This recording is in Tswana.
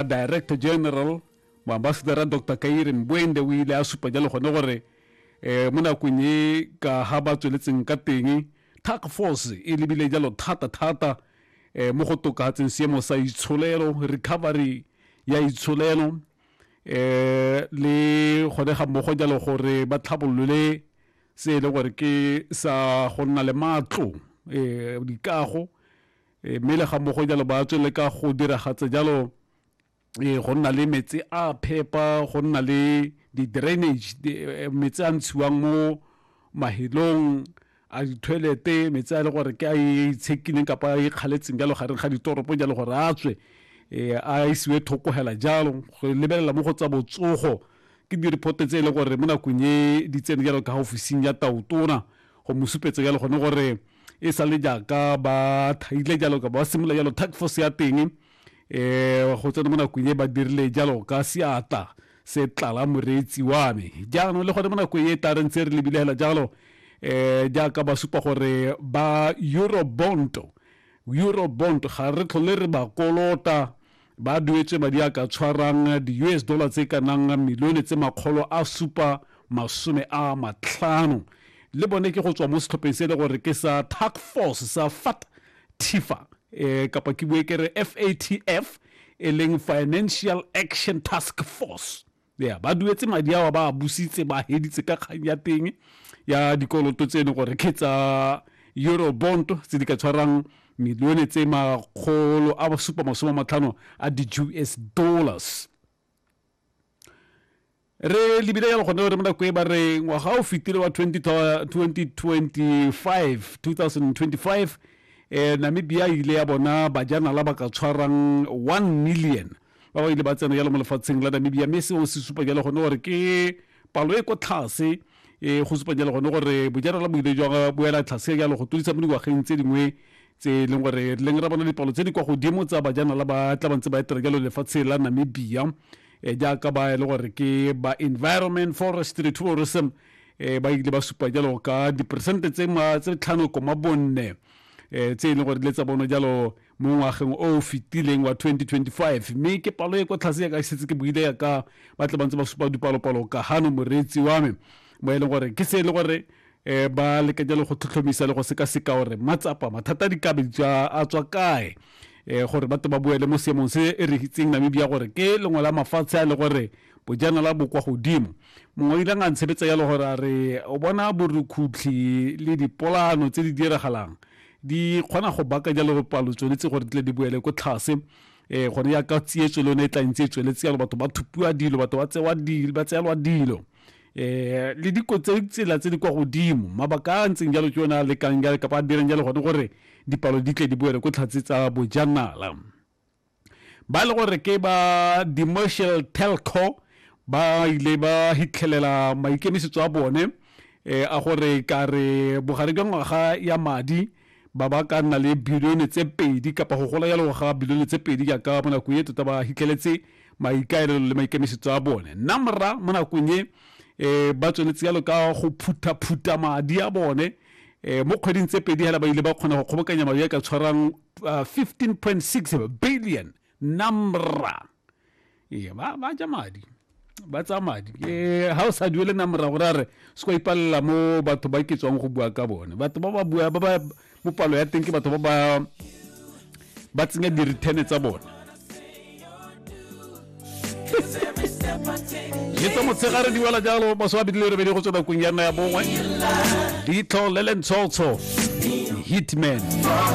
a director general moambasadara dr kaire mboende o ile a supa jalo gone gore um mo nakong e ka ga ba tsweletseng ka teng task force e lebile jalo thata-thata um mo go tokatseng seemo sa itsholelo recovery ya itsholelo um le gone ga mmogo jalo gore ba tlhabolole se e leng gore ke sa go nna le matlo um dikago e, mme le ga mo go jalo ba tswele ka go diragatsa jalo e, go nna le metsi a phepa go nna le di-drainage e, metsi a ntshiwang mo mahelong a dithoelete metsi a e le gore ke a e itshekileng kapa a ikgaletseng jalo gareng ga ditoropo jalo gore a tswe um a isiwe thoko hela jalo go lebelela mo go tsa botsogo ke di-report tse e leng gore mo nakong e di tsene jalo ka ofising ya taotona go mo supetsa jalo gone gore e sa le jaaka ba thaile jalo ka ba simolola jalo task force ya teng um go tsena mo nakong e ba dirile jalo ka seatla se tlala moreetsi wa me jaanong le gone mo nakong e tla re ntse re lebile fela jalo um jaaka ba supa gore ba eurobonto eurobond ga re tlhole re ba kolota Ba duetswe madi a ka tshwarang di-US dollar tse ka nang milione tse makgolo a supa masome a matlhano le bone ke go tswa mo setlhopheng se e le gore ke sa task force sa fat tifa e eh, kapa ke bue kere fatf e leng financial action task force ya ba duetse madi ao ba a busitse ba heditse ka kgang ya teng ya dikoloto tseno gore ke tsa eurobond tse di ka tshwarang milione tse makgolo a supa masome matlhano a di-us dollars re lebile jalo gone re mo nako e ba re ngwaga o fetile wa 2025 2025 eh namibia ile ya bona bajanala ba ka tshwarang 1 million ba ba ile ba tsena jalo mo lefatsheng la namibia mme seo se supa jalo gone gore ke palo e kwa tlhase e go supa jalo gone gore bojanala bo ile jwa boela tlhase jalo go todisa mo dingwageng tse dingwe tse e leng gore leng ra bona dipalo tse di kwa godimo tsa bajanala ba tla bantse ba etela jalo lefatshe la namibia e jaaka ba e le gore ke ba environment forestry tourism e ba ile ba supa jalo ka diperesente tse tlhano koma bonne um tse e leng gore le tsa bono jalo um mo ngwageng o o fetileng wa 2025 mme ke palo e kwa tlhase ya ka setse ke buile ya ka ba tle ba ntse ba supa dipalopalo ka gano moreetsi wa me mo e leng gore ke se e le gore um ba lekanya le go tlhotlhomisa le go sekaseka gore matsapa mathata a dikabe a tswa kae um gore batle ba boele mo seemong se e re itseng namibia gore ke lengwe la mafatshe a le gore bojanala bo kwa godimo mongwe o ilang a ntshebetsa yalo gore a re o bona borukhutlhi le dipolano tse di diragalang di kgona go baka jalo palo tsone tse gore di tle di boele ko tlhase eh gone ya ka tsietso le yone e tla ntse e tsweletse yalo batho ba thupiwa dilo batho ba tsewa dilo ba tseelwa dilo eh le diko tse tsela tse di kwa godimo mabaka a ntseng jalo ke yone a lekang jalo kapa a direng jalo gone gore dipalo di tle di boele ko tlhatse tsa bojanala ba e le gore ke ba demercial telco ba ile ba hitlhelela maikemisetso a bone eh, a gore ka re bogare jwa ngwaga ya madi ba ba ka nna le bilione tse pedi kapa go gola jalo ga bilione tse pedi jaaka mo nakong e tota ba hitlheletse maikaelelo le maikemisetso a bone nna mora mo nakong e um ba tsweletse jalo ka go phutha-phutha madi a bone um mo kgweding tse pedi hela ba ile ba kgona go kgobokanya madi a ka tshwarang uh, 15.6 billion namra ee ba ba ja madi ba tsa madi ee ha o sa duele namra gore a re se kwa ipalela mo batho ba ke tswang go bua ka bone batho ba ba bua ba ba mo palo ya teng ke batho ba ba ba tsenya dirithene tsa bone le tsa motshegare di wela jalo maswa bidi le rebedi go tswa nakong ya nna ya bongwe ditlho le lentshotsho hitman